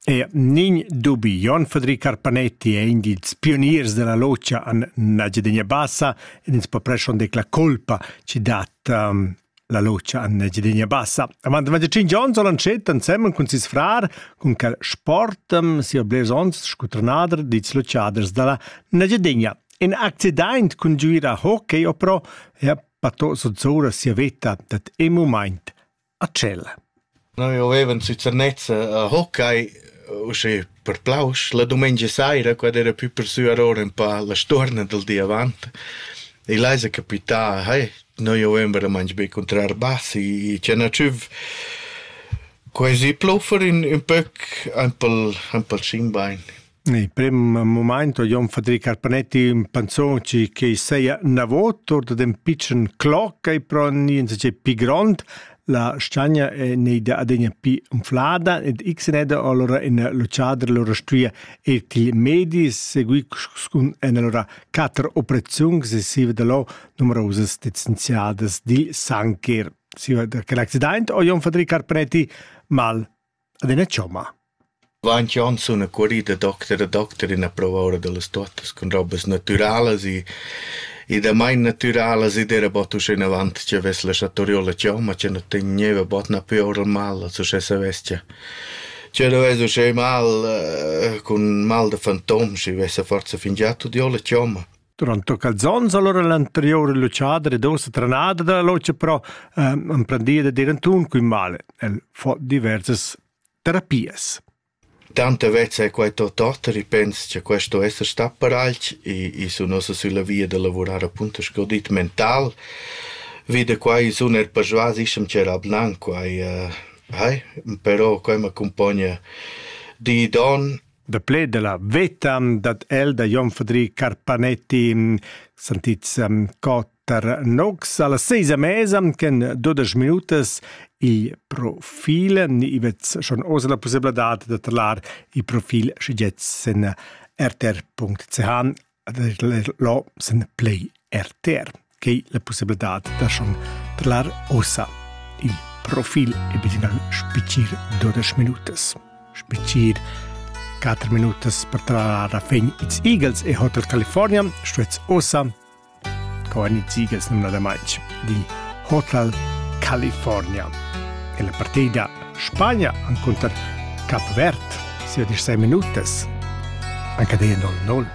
E nin dubi Jon Fadri Carpanetti è in dils pioniers della logia an Nagiadegna Bassa ed ins po preschon dec la colpa ci dat um, la logia an Nagiadegna Bassa. Avant da tschin Jon soll antschet ansemmen cun sis frar cun quel sportem sia blers ons scutranader dits logiaders dalla Nagiadegna. In accident cun giuira hockey opro ja pato sozzora sia veta dat e moment a tschel. Noi avevan sü Zernezza a hockey, usche per plausch. La dumengia saira, quad era pü persü a ora ün pa la stuorna dal di avant. E là esa capità, hey, noi avevem veramaing be cuntrar bass e tschena tschüf. Quai zi pluffer ün, ün pöc, aint pel, aint pel schinbain. Il prem mumaint ho Jon Fadri Carpanetti ün panzon chi chi seja navot our dad ün pitschen cloc e però gnü insatgè pi grond. La stagna è neida adegna pi unflada ed x neda allora in l'ucciadra allora stuia ir til medi seguì cun en allora quatter operaziuns sesiva da lo numerosas licenziadas dil sancher. Si da quel accident o Jon Fadri Carpanetti mal Ed ina chomma? Vainch on sun accurì da docter a docter in approva oura da las tuottas cun robas natüralas e e damain natüralas ed era bod uschenavant chi avess laschà torir la chomma chi nu tegneva bod napü oura il mal als uschè savess cha chi nu vess uschè mal cun mal da fantom schi vessa forsa fingià tudieu la chomma. Durant quels onns allora l'anterior luchader ed ussa trenada dalla lucha però eh, emprendia da dir antun cun male. El fa diversas terapias. Tanta vezza è quai tot otter, i pens che questo esser sta per alch e, e sun ossa sulla via da lavurar appunto sgodit mental. Vide quai sun er persuas ischem c'era blanc quai. Uh, hai, però quai m'accompagna di don Da pled della veta dat el da Jon Fadri Carpanetti sentits um, cotter nox alla seisa mesa chen dudesch minutas il profil ni ivet schon oz la possibilità da trlar il profil schigetz sen rtr.ch Lo sun plü rtr che la pussabladad da schon trallar ussa il profil e bilingual spetgir dudesch minutas. Spetgir quatter minutas per trallar a fin ils Eagles e Hotel California stuets ussa con ils Eagles numnadamain di Hotel California. E la partida Spagna encunter Cap Verd sia disei minutas. Anca de 1-0.